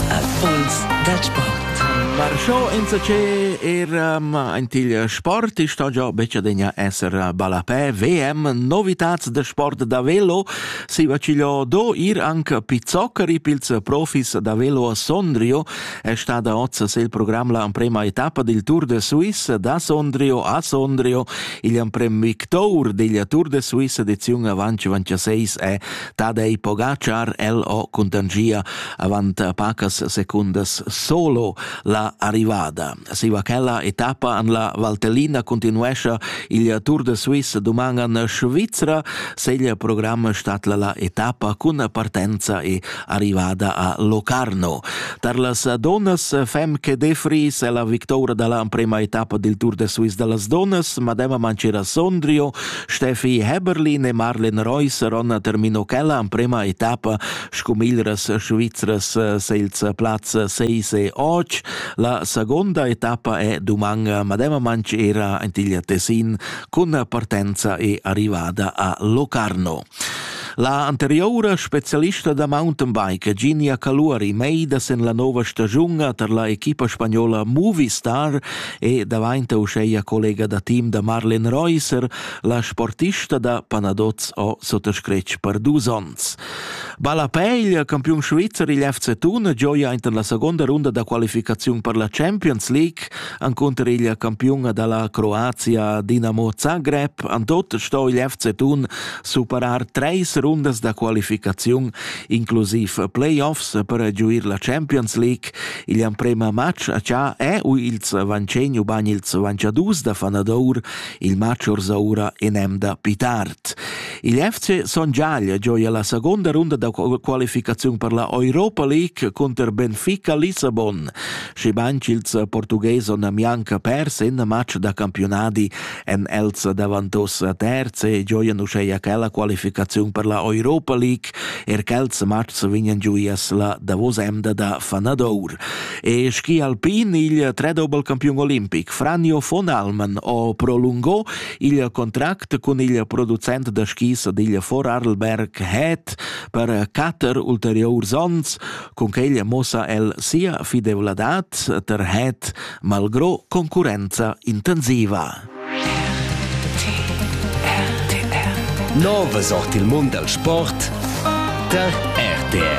Erfolgs da sport. Marchò insacé era antigl sport, i sta già becadegna esser ballapè VM Novitats de sport da velo, si vacigliò do ir anche pizzoccari pils profis da velo a Sondrio, è stata oz il programm la prima etappa del Tour de Suisse da Sondrio a Sondrio, il amprem victour della Tour de Suisse edizione avanti 26 è Dad ei pogatschar el ho cuntangia avant pacas secundas solo la arrivada. Siva quella etappa an la Valtellina continuescia il Tour de Suisse duman an Svizra, se il programm statla la etappa cun partenza e arrivada a Locarno. Tar las donas fem che defri se la victoria dalla prima etappa del Tour de Suisse dallas donas, Madema Mancera Sondrio, Steffi Heberlin e Marlen Reusser hanno termino quella emprema etappa sco miglras svizras senza plaz 6 e 8. La seconda etappa è duman mademamente era Antiglia Tessin con partenza e arrivata a Locarno. La anteriora specialista da mountainbike Ginia Caluari Meida sen la nova stagiun per la equipa spagnola Movistar e davainta uscheia collega da team da Marlen Reusser, la sportista da Panadoz o sottoscretg per dus ons. Balapeglia, campiun svizzer igl FC Thun, gioia inter la seconda runda da qualificaziun per la Champions League, anconter igl campiunga dalla Croazia Dinamo Zagreb, antot sto igl FC Thun superar treis rundas da qualificaziun, inclusiv playoffs per giuir la Champions League, Il emprema matg a cha è u ils vancegn ubain ils vanciadus da fanadour il matg orsaura in emda pi tard. Il FC Son Giaglia gioia la seconda runda da qualificaziun per la Europa League cunter Benfica Lissabon, schibain ch'ils Portughes on mianca pers in match da campiunadi en els davantos terze gioian uscheia che la qualificaziun per la Europa League Er quels mats vegnan giu ias la davosa emda da fanadour. E schi alpin il tredobel campion olimpic Franjo von Alman o prolungò il contract cun il producent da skis digl Vorarlberg Het per cater ulteriors ons, con quel mossa el sia fidevladad ter Het malgro concurenza intensiva. Nova sort il mund dal sport tar RTR.